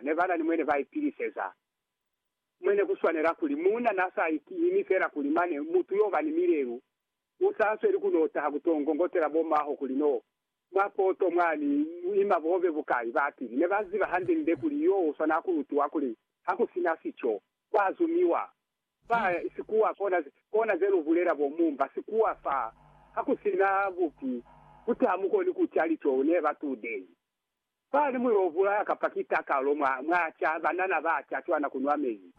ne ba na ni mwene ba ipiliseza. Mwene ku swanela kuli muuna n'a sa imi fela kuli mane mutu y'o ba ni milelu u sa sweli ku n'o taha ku t'o ngongotela bo m'aho kuli n'o mwa poto mwa ni ima bobe bukai. Ba pili ne ba ziba hande-nde kuli y'o u swanela ku lutiwa kuli ha ku si na sico, kwa zumiwa. Fa sikuwa kona, kona ze lu bulela bo mumba sikuwa fa, ha ku si na bupi, ku taha mukoni ku ca lico ne ba tudehi. Fa ni muyo obulaya kapa ki takalo mwa, mwa ca banana ba ca cwana kunwa mezi.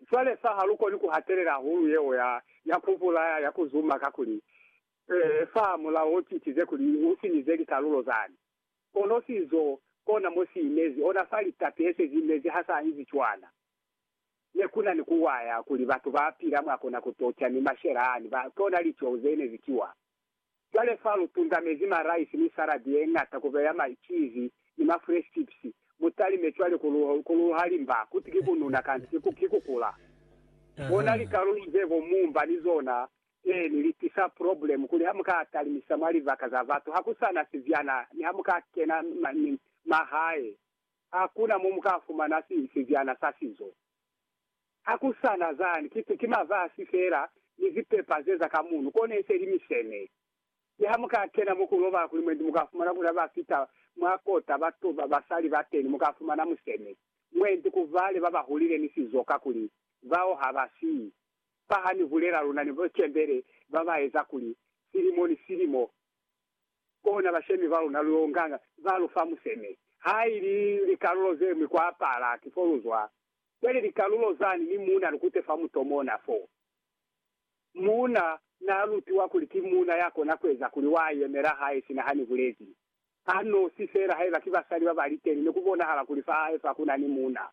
Cwale fa ha lu koni ku hatelela hulu yeo ya, ya ku bulaya, ya ku zuma, kakuli, ee, fa mulao o citize kuli u sinyize likalulo zani. Kono sizo, kona mo si inezi, ona fa litapi he se zi inezi ha sa inzi cwana. Ne ku na ni ku waya kuli batu ba pila mwa kona ku toca ni mashela ani, ba, kona liceo ze ne zi kiwa. Cwale fa lu tunzamezi maraisi ni saladi ye ñata ku beya maicizi ni mafresh chips, mu talime cwale ku lu, ku lu halimba kuti ki ku nuna kanti ki ku, ki ku kula. Bona likalulu ze bo mumba ni zona, eeni, li tisa problemu kuli ha mu ka talimisa mwa libaka za batu, ha ku sa na sibyana, ni ha mu ka kena ma, ni, mahae, ha ku na mo mu ka fumana si, sibyana sa sizo. Ha ku sa na zani, ki, ki mazazi fela ni zipepa ze za ka muno, kone se li misene. Mi ha mu ka kena mo ku lobala kuli mwendi, mu ka fumana kuli ha ba fita mwa kota batu ba basali ba teni, mu ka fumana musene mwendi ku bale ba ba hulile ni sizo, kakuli bao ha ba si fa ha ni bulela luna ni bo cembele ba ba eza kuli silimo ni silimo kona bashemi ba luna lu yo nganga, ba lu fa musene. Ha ili likalulo ze ñwi kwa pala, ki fo lu zwa. Cwale likalulo zani ni muuna lukute fa mutomona fo. Muuna naa lutiwa kuli ki muuna ya kona kueza kuli waa yemela hae sina hani bulezi a nosi feela haiba ki basali baba liteni ne kubonahala kuli fa hae fa kuna ni muuna.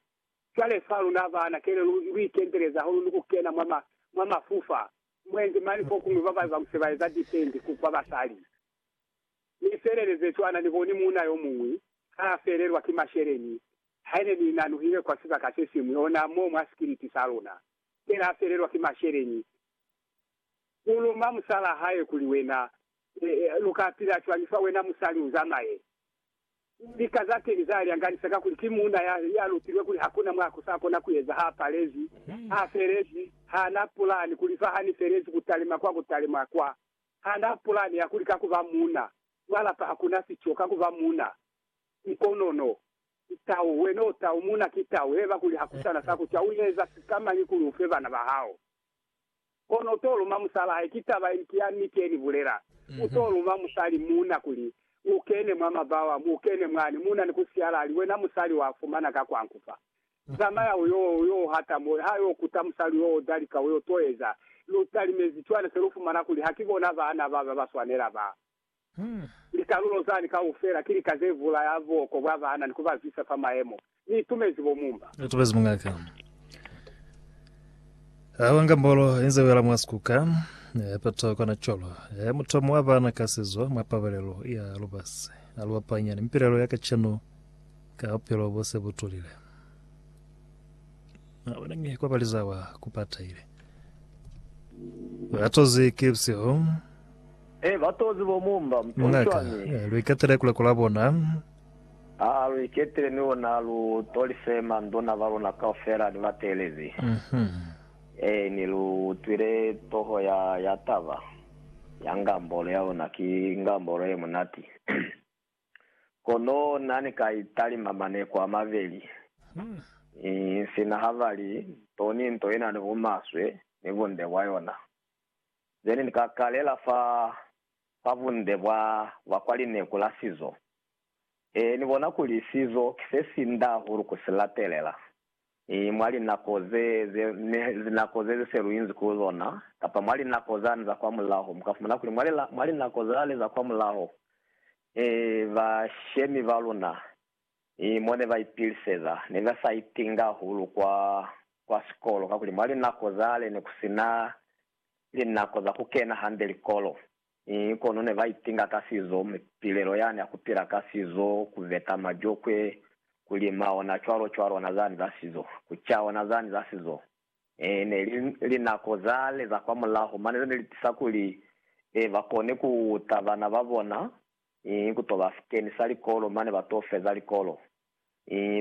Cwale fa luna baana kele lu lu ikenteleza hahulu ni kukena mwa ma mwa mafufa mwenzi mani fokuñwi baba ba muse baeza depend ku kwa basali. Ni felele ze cwana ni boni muuna yomuñwi haa felelwa ki masheleni Haine ni nanuhile kwa sibaka se siñwi, ona mo mwa sikiliti sa luna, fela a felelwa ki masheleñi, u luma musalaa hae kuli, Wena, lu ka pila cwañi fa wena musali u zamaye? Lika za teñi za lyanganisa kakuli ki muuna ya, ya lutilwe kuli hakuna mwa ku sa kona ku eza, ha palezi, ha felezi, ha na pulani kuli fa ha ni felezi ku talima kwa ku talima kwa. Ha na pulani ya kuli ka ku ba muuna mwa lapa hakuna sico, ka ku ba muuna Ki kono no. Ki tau, wena u tau, muna ki tau, heba kuli hakusana sa ku cauheza sikamañi kuli ufe bana ba hao. Kono u to luma musala hae, ki taba ye ki ya niti ye ni bulela. U to luma musali, muna, kuli, U kene mwa mabao amu, u kene mwani, muna, ni ku siyala ali, Wena musali, wa fumana ka kwa nku fa. Zamaya u yo, u yo hata mo, ha yo kuta musali yo o dalika, u yo toeza. Lu talimezi cwana se lu fumana kuli ha ki bona bana ba ba ba swanela ba. Likalulo zani kaufela ki lika ze bulaya buoko bwa bana ni ku ba zwisa fa mayemo. Ni itumezi bo mumba. Ni itumezi mungaka a wanga mbolo inze wela mwa sikuka. Peto kona colo e mutomo wa bana ka sizo mwa pabalelo ya lubasi. A lu apanya ni mipilelo ya kacenu ka bupilo bo se bu tulile. A bona mi kwa baliza wa ku pataile. Ba tozi ki busihu. He, ba tozi bo mumba mutoli Ngaka, cwañi? lu iketele kule ku la bona. Ha lu iketele mi ona lu toli se manduna ba luna kaufela ni ba teelezi. He, ni lu utwile toho ya, ya taba, ya ngambolo ya ona. Ki ngambolo ye munati. Kono Na ni ka i talima maneko a mabeli, ni sina ha ba li, Nto ni nto ina ni bumaswe ni bunde bwa yona. ze ne ni ka kalela fa, fa bunde bwa, bwa kwa lineku la sizo. Ee, ni bona kuli sizo ki se si nda hahulu ku si latelela, i, mwa linako ze, ze, ne, linako ze se lu inzi ku zona, kapa mwa linako zani za kwa mulaho, mu ka fumana kuli mwa lila, mwa linako zale za kwa mulaho, ee, bashemi ba luna, mi mo ne ba ipiliseza, ne ba sa itinga hahulu kwa, kwa sikolo, kakuli mwa linako zale ne ku si na linako za ku kena hande likolo, mi kono ne ba itinga ka sizo, mipilelo yani ya ku pila ka sizo, ku veta majokwe, ku lima ona cwalo cwalo, ona zani za sizo, ku ca ona zani za sizo. Ee, ne li linako zale za kwamulaho mane ze ne li tisa kuli, ee, ba kone ku uta bana ba bona Ii, Ku to ba sikeni sa likolo mane ba to feza likolo. Ii,